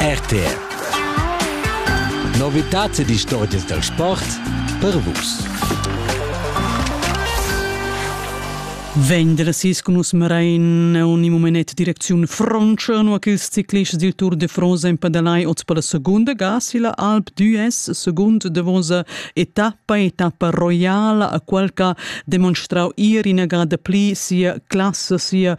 RTR Novitats ed istorgias dal sport per vus. Vendersis cun nus Mrein un im moment direcziun Frontscha, nu quels ciclists dil Tour de France empadalai oz per la segunda ga silla Alp d'Ues, segund davosa etappa, etappa roiala a qualca demonstrau ir ina ga da pli sia classa, sia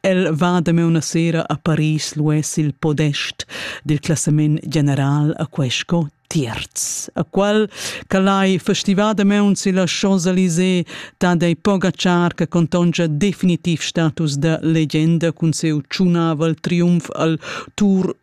El va damaun a sera a Paris luess il podest dil classament general a quei sco tierz, a qual calai festivadamaun silla Champs-Élysées ta dei Pogacar che contongia definitiv status da legenda cun seu tschunavel triumf al Tour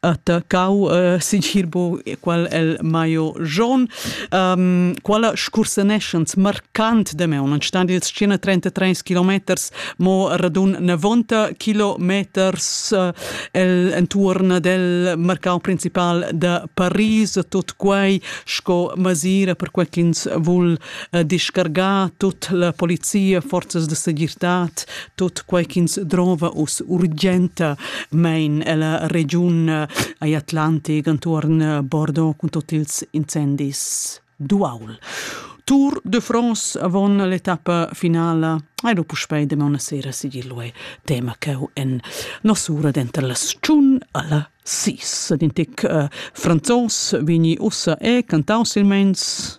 attaccau uh, sincer bo qual el Maio John um, quala scursaneschans marcant de me un stand il scena 33 kilometers mo radun 90 kilometers uh, el entuorn del mercau principal de Paris tot quei sco masira per quel ch'ins vul discargar tut la polizia, forzas de segirtad, tot quai ch'ins drova us urgenta mein ella regiun ai Atlantic antuorn Bordeaux cun tot ils incendis duaul. Tour de France avon l'etappa finala e dopo spei de una sera sigillue tema cheu en nosura denter las tschun alla sis. Dintic uh, franzos vini ussa e cantau silmeins